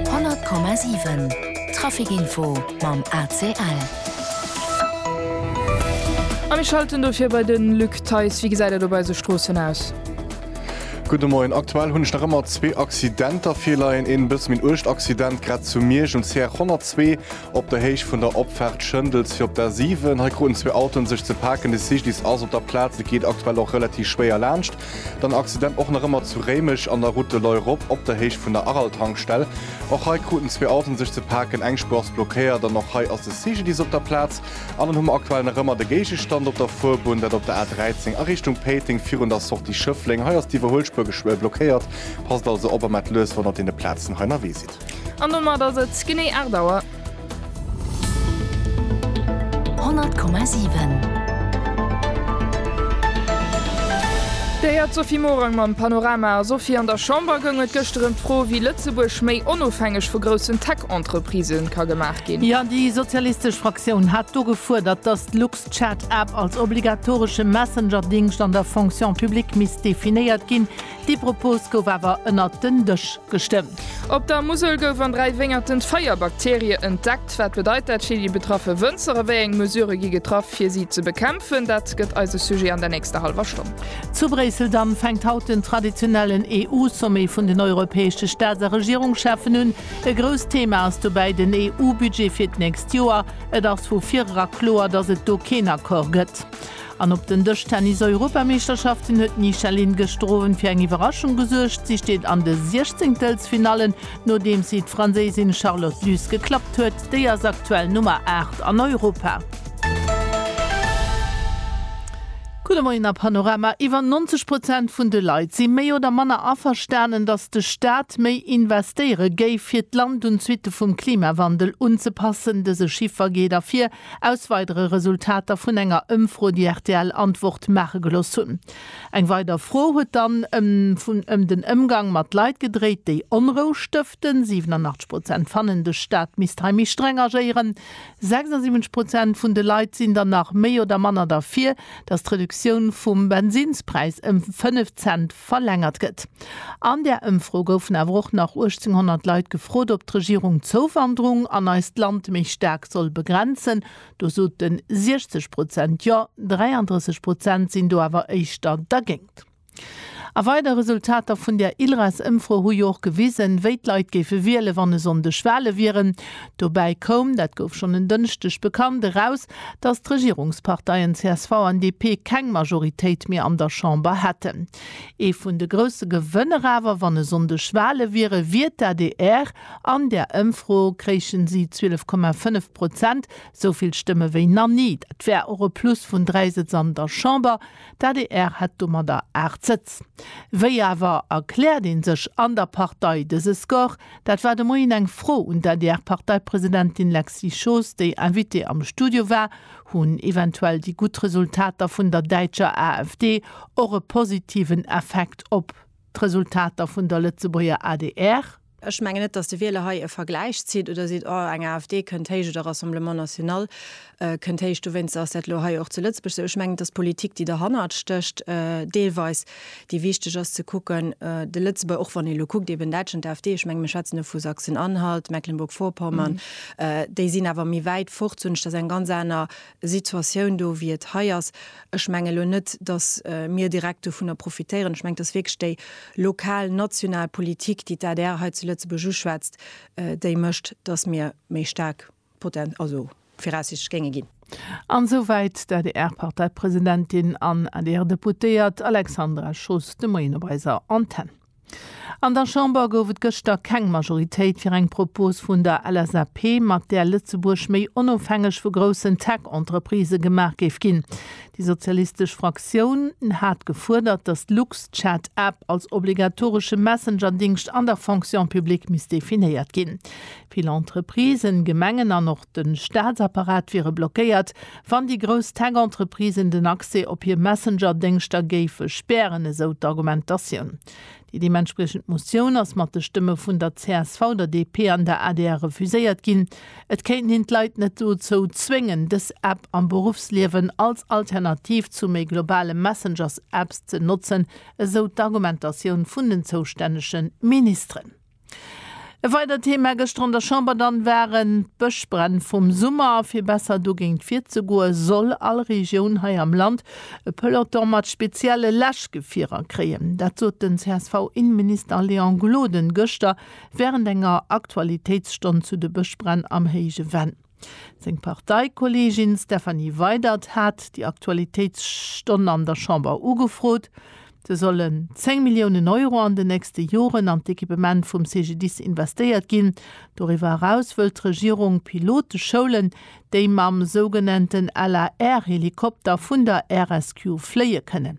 100,7 Trafic Info mam ACL. A mir schalten dofir bei de Luc Theis. Wéi gesäit et op eise Stroossen aus? Gudde Moien. Aktuell hunn ech nach ëmmer zwee Accidenter virleien. Een e bësse méi en uergt Accident grad zu Miersch um CR 102 op der Héicht vun der Opfaart Schëndels fir op der A7. Hei kruten zwee Autoen sech ze paken. De Cyclist ass op der Plaz, et geet aktuell och relativ schwéier laanscht. Den Accident och nach ëmmer zu Réimech an der Route de Loi rop op der Héicht vun der Araltankstell. Och hei kruten zwee Autoen sech ze paken, eng Spuer ass blockéiert an och hei ass de CGDIS op der Plaz. An dann hu mer aktuell nach ëmmer de Géigestand op der Fuerbunn, dat op der A 13 a Richtung Péiteng virun der Sortie Schëffleng. Hei ass d'Iwwerhuelspuer blockéiert, passt also op a maacht lues wann der op deene Plazen hei ënnerwee sidd. An domat ass et genee 8 Auer. Dir héiert d'Sophie Morang mam Panorama. A Sophie, an der Chamber goung et gëschter ëm d'Fro, wéi Lëtzebuerg méi onofhängeg vu groussen Tech-Entreprisë ka gemaach ginn. Jo, déi sozialistesch Fraktioun hat do gefuerdert, datt d'LuxChat-App als obligatoresche Messenger-Dingscht an der Fonction publique misst definéiert ginn. Dee Propos gouf awer ënnert den Dësch gestëmmt. Op der Musel gouf an dräi Wéngerten d'Feier Bakterie entdeckt. Wat bedeit dat fir déi betraffe Wënzer a wéi eng Mesure gi getraff, fir si ze bekämpfen? Dat gëtt eise Sujet an der nächster hallwer Stonn. Zu Bréissel dann fänkt haut den traditionellen EU-Sommet vun den europäesche Staats a Regierungscheffen un. E grousst Thema ass dobäi den EU-Budget fir d'nächst Joer. Et ass vu virera kloer, datt et do keen Accord gëtt. An op den Dëschtennis-Europameeschterschaften huet d'Nisha Lindgestroven fir eng Iwwerraschung gesuergt. Si steet an de Siechzéngtelsfinallen, nodeems si d'Franséisin Charlotte Luz geklappt huet. Déi ass aktuell Nummer 8 an Europa. Gudde Moien a Panorama, Iwwer 90 Prozent vun de Leit si méi oder manner averstanen, datt de Staat méi investéiere géif, fir d'Land un d'Suitte vum Klimawandel unzepassen. Dëse Chiffer geet ervir, Aus weidere Resultater vun enger Ëmfro, déi rtl Antwort maache gelooss hunn. Eng weider Fro huet dann ëm den Ëmgang mat Leit gedréit, déi Onrou stëften. 87 Prozent fannen, de Staat misst hei méi streng agéieren. 76 Prozent vun de Leit sinn dann nach méi oder manner derfir, datt d'Reduktioun vum Bensinnspräis ëm 5 Cent verlängert gëtt. An där Ëmfro goufen awer och nach 1800 Leit gefrot, ob d'Regierung d'Zouwanderung an eist Land méi staark soll begrenzen. Do sote 60 Prozent jo, 33 Prozent sinn do awer éischter dergéingt. A weider Resultater vun där ILRAS-Ëmfro hu jo och gewisen, wéi d'Leit géife wiele wann e Sonndeg Wale wieren. Dobäi koum, dat gouf schonn en Dënschdeg bekannt, eraus, datt d'Regierungsparteien csv an DP keng Majoritéit méi an der Chamber hätten. Ee vun de grousse Gewënner awer, wann e Sonndeg Wale wieren, wier d'ADR. An där Ëmfro kréichen si 12,5 Prozent, sou vill Stëmme wéi nach ni. Dat wär och e Plus vun dräi Sëtz an der Chamber. D'ADR hätt domadder aacht Sëtz. Wéi awer erkläert ee sech an der Partei dëse Score? Dat war de Moien eng Fro un d'ADR-Parteipresidentin Lexy Schoos, déi Invitée am Studio war. Hunn eventuell déi gutt Resultater vun der däitscher AfD och e positiven Effekt op d'Resultater vun der Lëtzebuerger adr? Ech mengen net, datt de Wieler hei e Vergläich zitt oder seet, oh, eng AfD kënnt héich oder Rassemblement National. kënnt héich. Dowéinst ass dat elo hei och zu Lëtzebuerg esou. Ech mengen, et ass d'Politik, déi derhannert stécht, deelweis, déi wichteg ass ze kucken, de Lëtzebuer, och wann ee elo kuckt, eben Däitschland, d'AfD, ech menge mir schwätzen elo vu Sachsen-Anhalt, Mecklenburg-Vorpommern, déi sinn awer méi wäit fort, soen ech, dat ass eng ganz aner Situatioun do, wéi et hei ass. Ech menge elo net, datt mir direkt dovunner profitéieren. Ech menge, et ass wierklech déi lokal, national Politik, déi d'ADR hei zu Lëtzebuerg uschwätzt, déi mécht, datt mir méi staark Potent, also viraussichtlech géinge ginn. An esou wäit d'ADR-Parteipresidentin an ADR-Deputéiert Alexandra Schoos de Moien op eiser Antenn. An der Chamber gouf et gëschter keng Majoritéit fir eng Propos vun der LSAP, mat där Lëtzebuerg méi onofhängeg vu groussen Tech-Entreprisë gemaach géif ginn. Déi sozialistesch Fraktioun hat gefuerdert, datt d'LuxChat-App als obligatoresche Messenger-Dingscht an der Fonction publique misst definéiert ginn. Vill Entreprisen, Gemengen an och de Staatsapparat wiere blockéiert, wann déi grouss Tech-Entreprisen den Accès op hir Messenger-Déngschter géife spären, esou d'Argumentatioun. Déi deementspriechend Motioun ass mat de Stëmme vun der csv, der DP an der adr refuséiert ginn. Et kéinten een d'Leit net dozou zwéngen, dës App am Beruffsliewen als Alternativ zu méi globale Messengers-Apps ze notzen, esou d'Argumentatioun vun den zoustännege Ministeren. E weidert Thema gëschter an der Chamber dann waren d'Bëschbränn vum Summer. Fir besser dogéint virzegoe soll all Regioun hei am Land e Peloton mat spezielle Läschgefierer kréien. Dat sot den CSV-Innenminister Léon Gloden gëschter wärend enger Aktualitéitsstonn zu de Bëschbränn am Héije Venn. Seng Parteikolleegin Stephanie Weydert hat déi Aktualitéitsstonn an der Chamber ugefrot, se sollen 10 Milliounen Euro an den nächste Joren an d'Equipement vum CGDIS investéiert ginn. Doriwwer eraus wëllt d'Regierung Pilote schoulen, déi mam sougenannten LAR-Helikopter vun der RSQ fléie kënnen.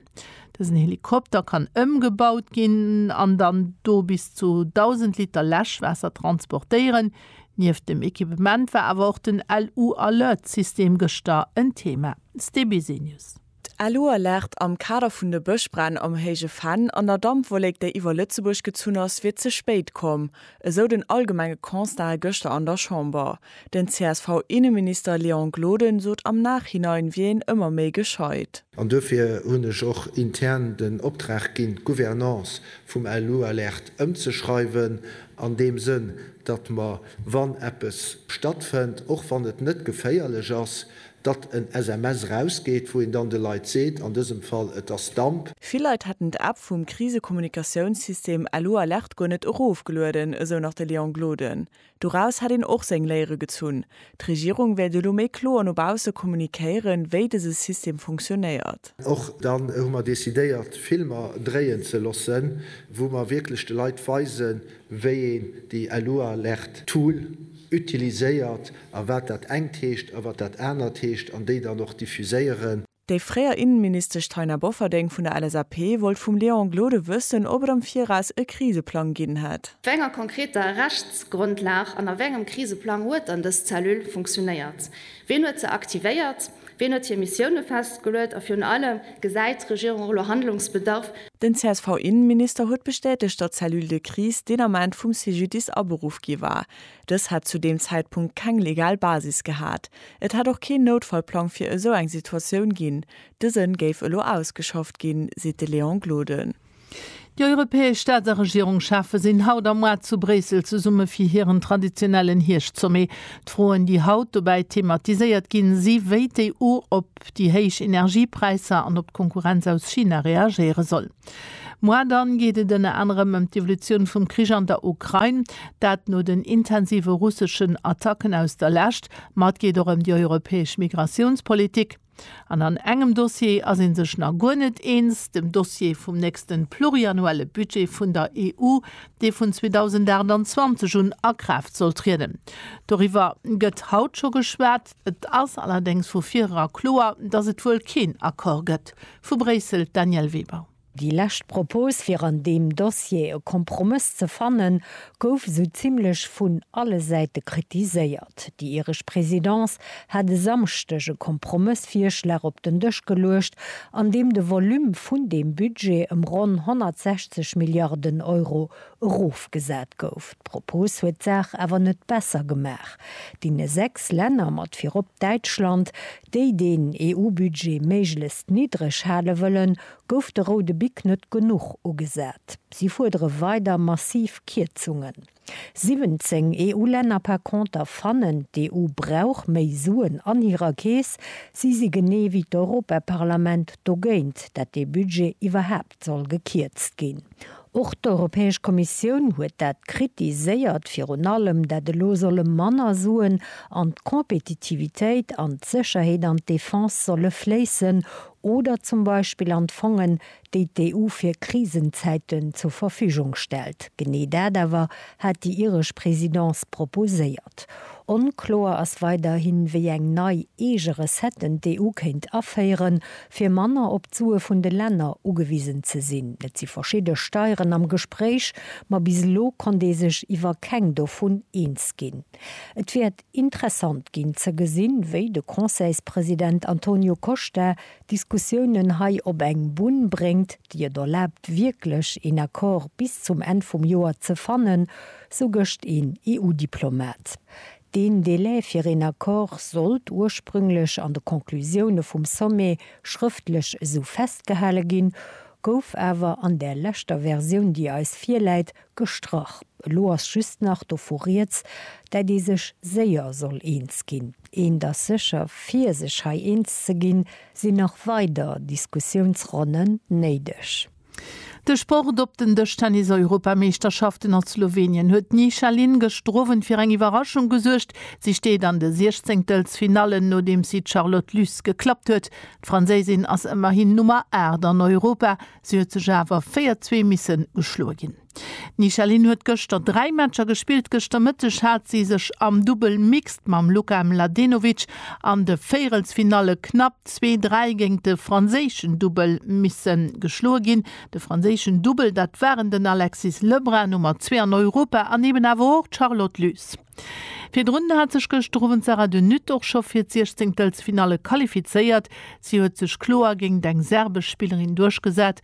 Dësen Helikopter kann ëmgebaut ginn an dann do bis zu 1.000 Liter Läschwaasser transportéieren. Nieft dem Ekipement war awer och den LU Alert System gëschter en Thema. STBC News. D'LU Alert am Kader vun de Bëschbränn am Héije Venn an der Dampwollék déi iwwer Lëtzebuerg gezunn ass, wier ze spéit komm, esou den allgemenge Constat gëschter an der Chamber. Den csv Inneminister Léon Gloden sot am Nachhinein wier een ëmmer méi gescheit. An duerfir hunn ech och intern den Optrag ginn d'Gouvernance vum LU Alert ëmzeschreiwen an deem Sënn, datt mer, wann eppes stattfënnt, och wann et net geféierlech ass, datt en SMS erausgeet, wou een dann de Leit seet, an dësem Fall, et ass Damp. Vill Leit hätten d'App vum Krisekommunikatiounssystem LU Alert guer net erofgelueden, esou nach de Léon Gloden. Doraus hätt een och seng Léiere gezunn, D'Regierung wäert elo méi kloer no bausse kommunikéieren, wéi dëse System funktionéiert. Och dann hu mer decidéiert, Filmer dréien ze loossen, wou mer wierklech de Leit weisen, wéi een déi Elualert Tool utiliséiert a wat dat engt heescht a wat dat anert heescht, an déi dann och diffuséieren. Déi fréier Innenministesch Taina Bofferding vun der LSAP wollt vum Léon Gloden wëssen, ob et am Viraus e Kriseplang ginn hätt. Op wéi enger konkreter Rechtsgrondlag an a wéi engem Kriseplang huet dann dës Cellule funktionéiert? Wien huet se aktivéiert? Wien huet hir Missioune festgeluet? A virun allem, Gesäit d'Regierung elo Handlungsbedarf? Den CSV-Innenminister huet bestätegt, datt d'Cellule de crise deen Ament vum CGDIS aberuff gi war. Dës hätt zu deem Zäitpunkt keng legal Basis gehat. Et hätt och keen Noutfallplang fir esou eng Situatioun ginn. Dëse géif elo ausgeschafft ginn, seet de Léon Gloden. Déi europäesch Staats a Regierungschefe sinn haut am Mois zu Bréissel zesumme fir hiren traditionellen Hierscht-Sommet. D'Froen, déi haut dobäi thematiséiert ginn, si wéi d'EU op déi héich Energiepräisser an op d'Konkurrenz aus China reagéiere soll. Moi, dann geet et ënner anerem ëm d'Evolutioun vum Krich an der Ukrain, dat no den intensive russeschen Attacken aus der Lescht, ma et geet och ëm déi europäesch Migratiounspolitik. An an engem Dossier ass ee sech nach guer net eens, dem Dossier vum nächsten pluriannuelle Budget vun der EU, dee vun 2028 un a Kraaft soll trieden. Doriwwer gëtt haut scho geschwat. Et ass allerdéngs vu virera kloer, datt et wuel keen Accord gëtt. Vu Bréissel, d'Danièle Weber. Déi lescht Propos fir an deem Dossier e Kompromëss ze fannen, gouf esou zimmlech vun alle Säite kritiséiert. Déi iresch Presidence hat e Samschdeg e Kompromëssvirschlag op den Dësch geluecht, an deem de Volume vun deem Budget ëm ronn 160 Milliarden Euro erofgesat gouf. D'Propos huet d'Saach awer net besser gemaach. Deene sechs Länner, mat virop Däitschland, déi deen EU-Budget méiglechst niddreg hale wëllen, gouf de roude Bic net genuch ugesat. Si fuerdere weider massiv Kierzungen. 17 EU-Länner par conter fannen, d'EU brauch méi Suen an hirer Keess. Si si genee wéi d'Europaparlament dogéint, dat dee Budget iwwerhaapt. soll gekierzt ginn. Och d'Europäesch Kommissioun huet dat kritiséiert, virun allem dat elo solle manner Suen an d'Compétitivitéit, an d'Sécherheet an d'Defense solle fléissen oder zum Beispill an d'Fongen, déi d'EU fir Krisenzäiten zur Verfügung stellt. Genee dat awer hat déi iresch Présidence proposéiert. Onkloer ass weiderhin, wéi eng nei eege Recetten d'EU kéint aféieren, fir manner op d'Sue vun de Länner ugewisen ze sinn. Et si verschidde Steieren am Gespréich, ma bis elo konnt ee sech iwwer keng dovun eens ginn. Et wäert interessant ginn ze gesinn, wéi de Conseilspresident Antonio Costa d'Diskussiounen hei op eng Bunn bréngt, déi et erlaabt wierklech een Accord bis zum Enn vum Joer ze fannen, sou gëscht een EU-Diplomat. Deen Délai fir een Accord sollt ursprünglech an de Conclusioune vum Sommet schrëftlech esou festgehale ginn, gouf awer an där leschter Versioun, déi eis virläit, gestrach. Elo ass just nach dovu Rieds, dat ee sech séier soll eens ginn. Eent ass sécher, Fir sech hei eens ze ginn, sinn nach weider Diskussiounsronne néideg. De Sport op den Dëschtennis-Europameeschterschaften a Slowenien huet d'Nishalin gëschter Owend fir eng Iwwerraschung gesuergt. Si steet an de Siechzéngtelsfinallen, nodeems si d'Charlotte Lys geklappt huet. D'Franséisin ass ëmmerhin Nummer 8 an Europa, si huet sech awer 4 Zwee misse geschloe ginn. D'Michaline huet gëschter dräi Matcher gespillt. Gëschter Mëtteg hat si sech am Dubbel Mixed mam Luka Mladenovic an de Véierelsfinalle knapp zwee, dräi géint de franséischen Dubbel misse geschloe ginn. De franséischen Dubbel, dat waren den Alexis Lebrun, Nummer zwee an Europa, an eben awer och d'Charlotte Lys. Virdrun hat sech gëschter Owend d'Sarah De Nutte och scho fir d'Siechzenktelfinalle qualifizéiert. Si huet sech kloer géint eng serbesch Spillerin duerchgesat.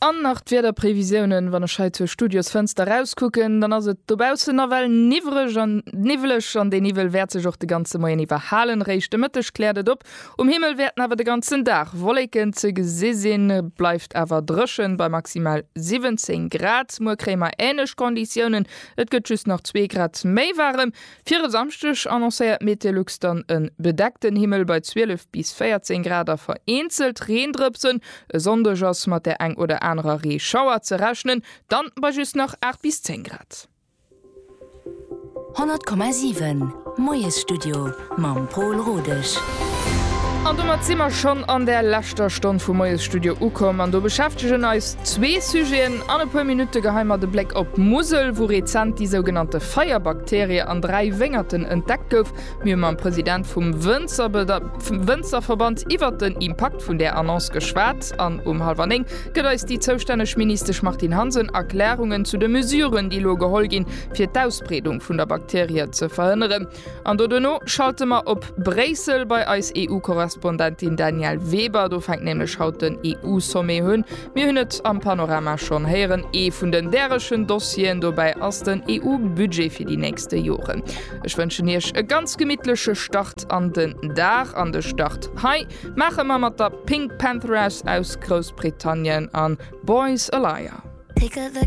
An nach d'Wiederprévisiounen, wann ech hei zur Studiosfënster erauskucken, dann ass et dobaussen nawell niwwreg an niwweleg an dee Niwwel wäert sech och de ganze Moien iwwer halen. Réischt de Mëtteg kläert et op, um Himmel wäerten awer de ganzen Dag Wolleken ze gesi sinn, et bleift awer dréchen bei maximal 17 Grad. Muer kréie mer änlech Konditiounen, et gëtt just nach zwee Grad méi waarem. Fir e Samschdeg annoncéiert Meteolux dann e bedeckten Himmel bei 12 bis 14 Grad a vereenzelt Reendrëpsen. E Sonndeg ass mat der eng oder anerer Reeschauer ze rechnen, dann bei just nach 8 bis 10 Grad. 100,7 Moiesstudio mam Pol Rodesch. An domat si mer schonn an der leschter Stonn vum Moiesstudio ukomm an do beschäftegen eis. Zwee Sujeten an e puer Minutte geheien mer de Bléck op d'Musel, wou rezent déi sougenannte Feierbakterie an dräi Wéngerten entdeckt gouf. Mir hu mam President vum Wënzerverband iwwert den Impakt vun där Annonce geschwat an um hallwer néng gëtt eis déi zoustänneg Ministesch Martine Hansen Erklärungen zu de Mesuren, déi elo geholl ginn, fir d'Ausbreedung vun der Bakterie ze verhënneren. An do duerno schalte mer op Bréissel bei eis EU-Korrespondentin Danièle Weber. Do fänkt nämlech haut den EU-Sommet hunn. Mir hunn et am Panorama schonn héieren, ee vun den därechen Dossieren dobäi ass den EU-Budget fir déi nächste Joren. Ech wënschen Iech e ganz gemittleche Start an den Dag. An de Start hei maache mer mat der Pink Pantheraus aus Groussbritannien a Boys a Liar.